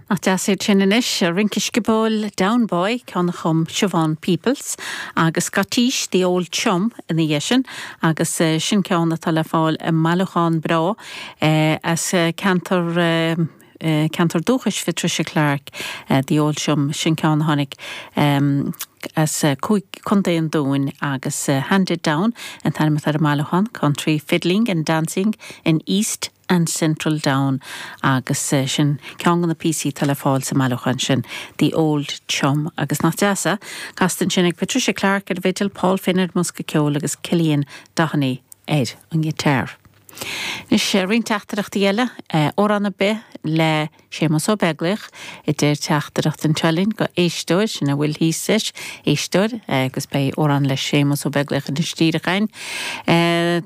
Nach deas iad sin anois, rince sciobóil Down Boy, ceann a chum Siobhán Peoples, agus Scottish, The Old Chum ina dhiaidh sin, agus sin ceann atá le fáil i mbailiúchán breá as an gceantar, ceantar dúchais Phatricia Clarke, The Old Chum, sin ceann a tháinig as Cúige, Contae an Dúin agus Handed Down an t-ainm atá ar an mbailiúchán, Country Fiddling and Dancing in East. and Central Down agus sin ceann de na píosaí atá le fáil sa mbailiúchán sin, The Old Chum. Agus nach deas é? Casta ansin ag Patricia Clarke ar an bhfidil, Paul Finn ar an mbosca ceoil agus Cillian Doheny ar an ngiotar. Anois roinnt teachtaireachtaí eile, amhrán ar bith le. Séamus Ó Beaglaoich, a deir teachtaireacht anseo linn ó éisteoir, sin a bhfuil thíos leis, éisteoir, agus beidh amhrán le Séamus Ó Beaglaoich anois díreach againn.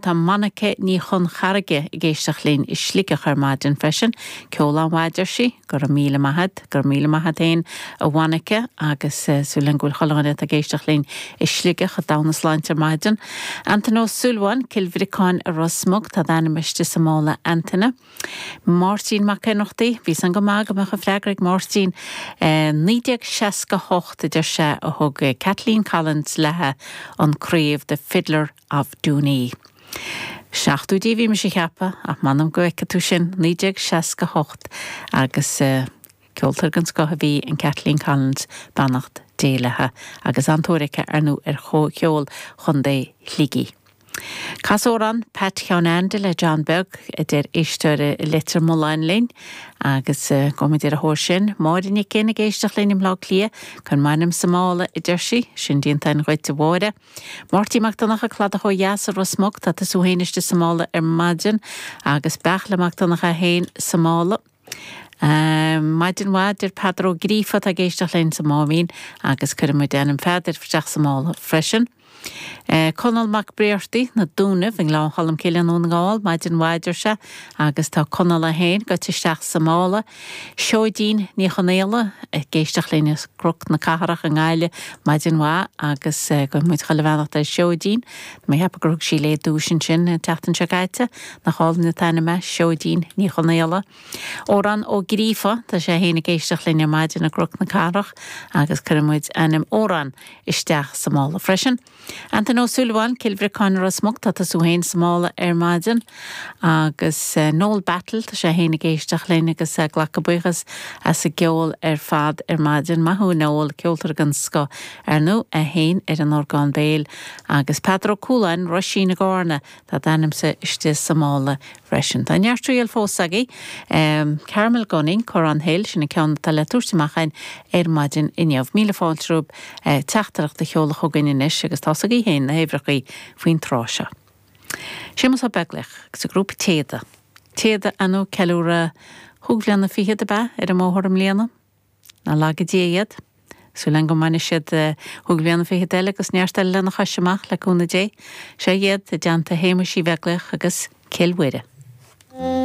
Tá Monica Ní Chonchairrge ag éisteacht linn i Sligeach ar maidin freisin. Ceol an-mhaith a deir sí. Go raibh míle maith a'd. Go raibh míle maith a'd féin a Mhonica agus súil linn go bhfuil chuile dhuine atá ag éisteacht linn i Sligeach ag dul 'na sláinte ar maidin. Antaine Ó Súilleabháin, Cill Bhriocáin i Ros Muc, tá d'ainm istigh sa mála Antaine. Máirtín Mac an Iomaire, bhí a fhios a'm go maith go mbeadh an freagra ag Máirtín. I 1968, deir sé, a thug Kathleen Collins léithe an craobh The Fiddler of Dooney. Seachtóidí a bhí mise ag ceapadh, ach m'anam go bhfeiceann tú sin, 1968, agus ceoltóir den scoth a bhí in Kathleen Collins, beannacht Dé léithe, agus an-tóir acu, ar ndú, ar chomórtas cheoil Chondae Shligigh. Cas amhrán Pat Sheáin Andy le John Beag, a deir éisteoir i Leitir Mealláin linn, agus go mb'fhéidir a thóir sin, Máire Nic Fhinn ag éisteacht linn i mBleá Cliath, cuir m'ainm sa mála, a deir sí, sin déanta a'inn dhuit, a Mháire. Máirtín Mac Donncha, Cladach ó Dheas i Ros Muc, tá tusa féin istigh sa mála ar maidin, agus Beartla Mac Donncha é féin sa mála. Um maidin mhaith, deir Peadar Ó Gríofa atá ag éisteacht linn sa mBáibhín, agus cuirfidh muid ainm Pheadair isteach sa mála freisin. Eh Conall Mac Breartaigh, na Dúnaibh i nGleann Cholm Cille i nDún na nGall, maidin mhaith deir sé, agus tá Conall é féin goite isteach sa mála. Seoidín Ní Chonaola, ag éisteacht linn as Cruc na Cathrach i nGaillimh, maidin mhaith, agus eh guíonn muid chuile bheannacht ar Sheoidín, tá mé ag ceapadh gur thug sí léi duais ansin an tseachtain seo caite. Nach álainn an t-ainm é Seoidín Ní Chonaola? Odhrán Ó Gríofa, tá sé féin ag éisteacht linn ar maidin i gCnoc na Cathrach agus cuirfidh muid ainm Odhráin isteach sa mála freisin. Antaine Ó Súilleabháin, Cill Bhriocáin, Ros Muc, tá tusa féin sa mála ar maidin. Agus Noel Battle, tá sé féin ag éisteacht linn agus ag glacadh buíochas as an gceol ar fad ar maidin. Maith thú a Noel, ceoltóir den scoth ar ndú, é féin ar an orgán béil. Agus Peadar Ó Cúláin, Roisín, i gCarna, Tá d'ainmse istigh sa mála freisin. Tá neart triail fós againn. Carmel Gunning, Corran Hill, sin an ceann atá le tabhairt amach againn ar maidin inniu. Míle fáilte romhaibh teachtaireacht a sheoladh chugainn anois agus tá a fhios agaibh féin na huimhreachaí faoin tráth seo. Séamus Ó Beaglaoich agus a ghrúpa Téada. Téada atá ag ceiliúradh chúig bhliana fichead, ab ea? ar an mbóthar i mbliana. Ná laga Dia iad. Súil againn go mbainfidh siad chúig bhliana fichead eile agus neart eile lena chois amach le cúnamh Dé. Seo iad, i dteannta Shéamuis Uí Bheaglaoich agus Cill Mhuire.